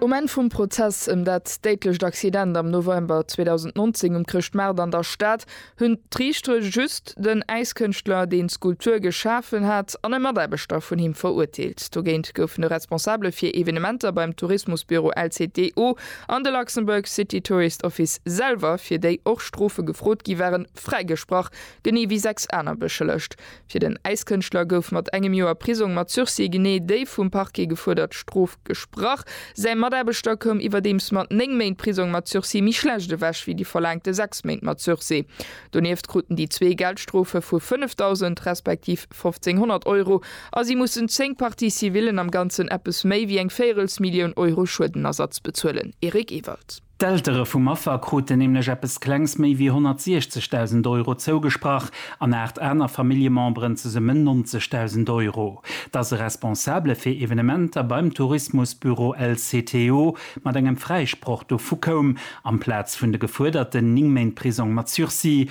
Um Enn vum Prozess ëm dat déidlecht Accident am November 2019 um Chrëschtmaart an der Stad hunn d'Riichtere just den Äiskënschtler, deen d'Skulptur geschafen hat, an e Mataarbechter vun him verurteelt. Dogéint goufen de Responsabele fir Evenementer beim Tourismusbüro LCTO an de Luxembourg City Tourist Office selwer, fir déi och Strofe gefrot gi waren, fräigesprach, genee wéi sechs aner beschëllegt. Fir den Äiskënschtler gouf mat engem Joer Prisong mat Sursis genee déi vum Parquet gefuerdert Strof gesprach. Säi Mataarbechter koum iwwerdeems mat néng Méint Prisong mat Sursis méi schlecht ewech wéi déi verlaangte sechs Méint mat Sursis. Donieft kruten déi zwee Geldstrofe vu 5.000 respektiv 1.500 Euro a si mussen zéng Parties civillen, am Ganzen eppes méi wéi eng Véierelsmillioun Euro, Schuedenersatz bezuelen. Eric Ewald. D'Eltere vum Affer kruten nämlech eppes Klengs méi wéi 160.000 Euro zougesprach an aacht aner Familljememberen zesummen 90.000 Euro. Dass e Responsabele fir Evenementer beim Tourismusbüro LCTO mat engem Fräisproch dovu koum, amplaz vun de gefuerderten 9 Méint Prisong mat Sursis,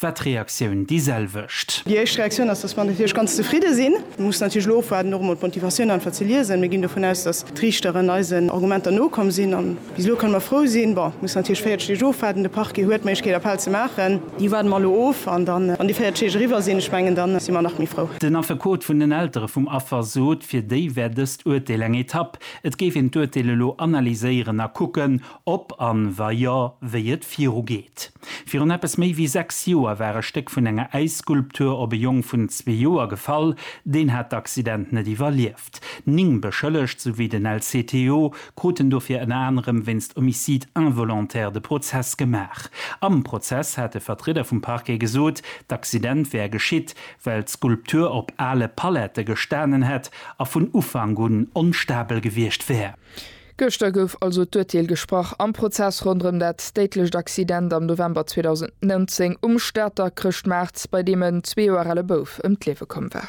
war d'Reaktioun déi selwecht. Déi éischt Reaktioun ass, dass mer natierlech ganz zefridde sinn. Mir mussen natierlech elo ofwaarden, och emol d'Motivatioun einfach ze liesen. Mir ginn dovun aus, dass d'Riichteren eisen Argumenter nokomm sinn. A bis elo kënne mer frou sinn. Bon, mir mussen natierlech 40 Deeg ofwaarden. De Parquet huet d'Méiglechkeet, Appell ze maachen. Déi waarde mer elo of. An dann, wann déi 40 Deeg eriwwer sinn, ech mengen, da si mer nach méi frou. Den Affekot vun den Eltere vum Affer sot, fir déi wär dëst Urteel eng Etapp. Et géif een d'Urteel elo analyséieren a kucken, ob an, wa jo, wéi et virugeet. Virun eppes méi wéi sechs Joer war e Stéck vun enger Äisskulptur op e Jong vun zwee Joer gefall. Deen hat d'Accident net iwwerlieft. Ning Beschëllegt, souwéi den LCTO, kruten dofir ënner anerem wéinst Homicide involontaire de Prozess gemaach. Am Prozess hat e Vertrieder vum Parquet gesot, d'Accident wär geschitt, well d'Skulptur op ale Palette gestanen hätt a vun Ufank un onstabel gewiescht wär. Gëschter gouf also d'Urteel gesprach am Prozess ronderëm dat déidlecht Accident am November 2019 um Stater Chrëschtmaart, bei deem en zwee Joer ale Bouf ëm d'Liewe komm war.